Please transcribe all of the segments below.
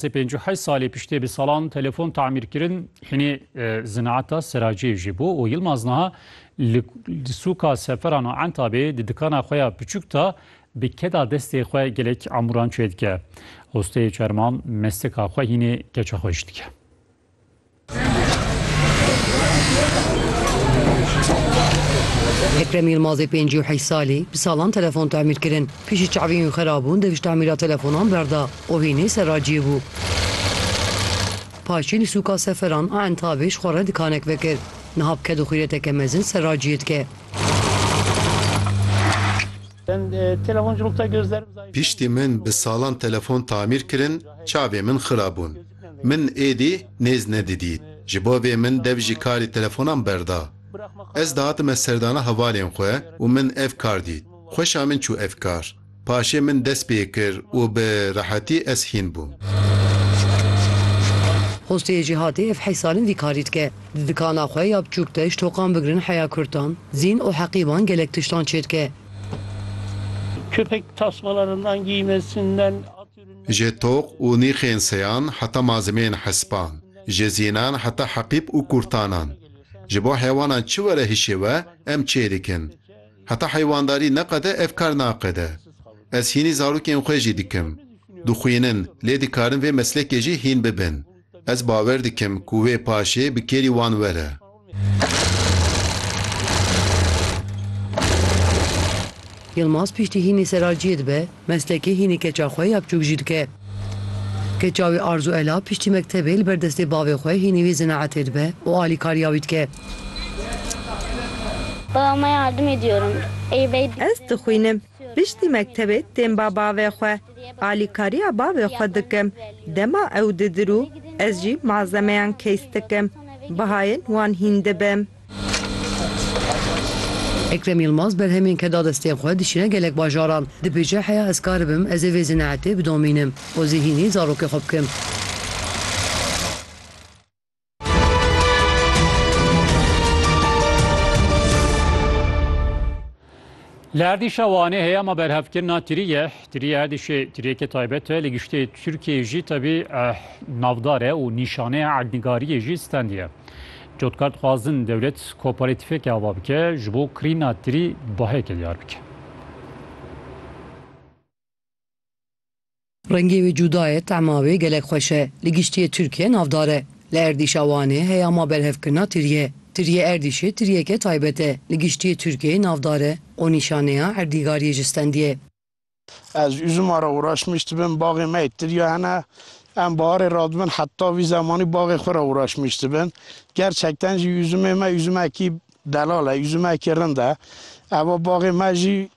Sê pênc û heşt salê piştê bi salan telefon tamîr kirin hinê zinaeta seraciyê jî bû û Yilmaz niha li sûka seferan û entabê di dikana xwe ya piçûk de bi keda destê xwe gelek amûran çêdike. Hosteyê çerman mestika xwe hînê keça xwe jî dike. Ekrem Yilmazê pêncî û heyş salî bi salan telefon tamîr kirin. Piştî çavên wî xerabûn dev ji tamîra telefonan berda û vî nê serraciyê bû. Paşê li sûka Seferan a Entabê ji xwe re dikanek vekir. Niha bi ked û xîreteke mezin serraciyê dike. Piştî min bi salan telefon tamîr kirin, çavên min xirabûn. Min êdî nêz nedidî. Ji bo vê min dev jî karî telefonan berda. Ez dihatime serdana hevalên xwe û min ev kar dît. Xweşa min çû ev kar. Paşê min dest pê kir û bi rehetî ez hîn bûm. Xosteyê Cîhatê ev heyş sal in vî karî dike. Di dikana xwe ya biçûk de ji toqan bigirin heya kurtan, zîn û heqîban gelek tiştan çêdike. Ji toq û nîxên seyan heta malzemeyên hespan, ji zînan heta heqîb û kurtanan, ji bo heywanan çi were hişê we em çê dikin. Heta heywandarî neqede ev kar naqede. Ez hînî zarokên xwe jî dikim. Dixwînin lê dikarin vê meslekê jî hîn bibin. Ez bawer dikim ku wê paşê bi kêrî wan were. Yilmaz piştî hînî seralciyê dibe, meslekê hînî keça xwe ya biçûk jî dike. Keça wî Arzu Ela piştî mektebê li ber destê bavê xwe hînî vê zinaetê dibe û alîkariya wî dike. Ez dixwînim. Piştî mektebê tên ba bavê xwe. Alîkariya bavê xwe dikim. Dema ew didirû ez jî malzemeyan keys dikim. Bihayên wan hîn dibim. Ekrem Yilmaz berhemên ke da destên xwe dişîne gelek bajaran. Dibêje heya ez kar bim ez ê vê zinaetê bidomînim û zî hînî zarokê xwe bikim. Li erdîşa Wanê heyama berhevkirina tiriyê, tiriyê erdîşê tiriyeke taybet e li giştê Tirkiyeyê jî tevî eh, navdar e û nîşaneya erdnigariyê jî stendî ye. Cotkar dixwazin dewlet kooperatîfeke ava bike ji bo kirîna tirî baheke diyar bike. Rengê wê cuda ye, tema wê gelek xweş e. Li giştiyê Tirkiye navdar e. Li erdîşa Wanê heya ma berhevkirina tiriyê. Tiriyê erdîşê tiriyeke taybet e. Li giştiyê Tirkiyeyê navdar e û nîşaneya erdîgariyê ji stendiyê ye. Ez üzuma re uraşmiş dibim, baxê me yê tiriya hene. Em baharê radibin heta vî zemanî baxê xwe re uraşmiş dibin. Gerçekten jî üzumê me üzumekî delal e, üzumekî rind e. Eva baxê me jî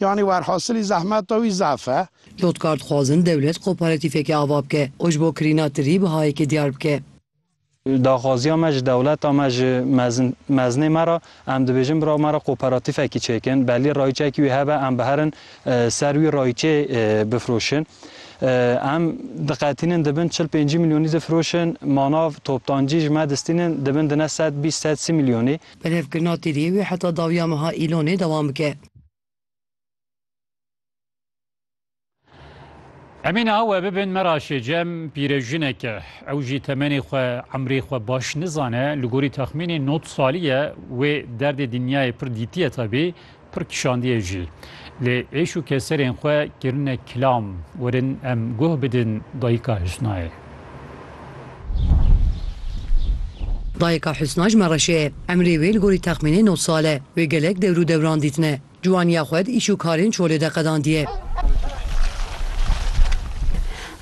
Yanî werhasilî zehmeta wî zaf e. Lotkar dixwazin dewlet kooperatifeke ava bike û ji bo kirîna tirî bihayeke diyar bike. Daxwaziya me ji dewleta me ji mezin mezinê me re em dibêjin bira me re kooperatifekî çêkin belî rayîçekî wî hebe em biherin ser wî rayîçê bifroşin. Em diqetînin dibin çil pêncî milyonî difiroşin manav toptancî ji me distînin dibin dine sed bîst sed sî milyonî. Berhevkirina tirî wê heta dawiya meha Îlonê dewam bike. Emîne ha we bibin Meraşê Cem pîrejinek e. Ew jî temenê xwe emrê xwe baş nizane li gorî texmînê not salî ye wê derdê dinyayê pir dîtiye tevî pir kişandiye jî. Lê êş û keserên xwe kirine kilam werin em guh bidin dayika Husnayê. Dayika Husna ji Mereşê ye. Emrê wê li gorî texmînê nod sal e. Wê gelek dewr û dewran dîtine. Ciwaniya xwe di îş û karên çolê de qedandiye.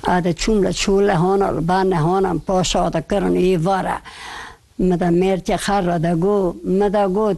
A de çûm li çole hona li ba nehanan paşa de kirin ê vara. Mi de mêrkê xerre de got. Mi de got.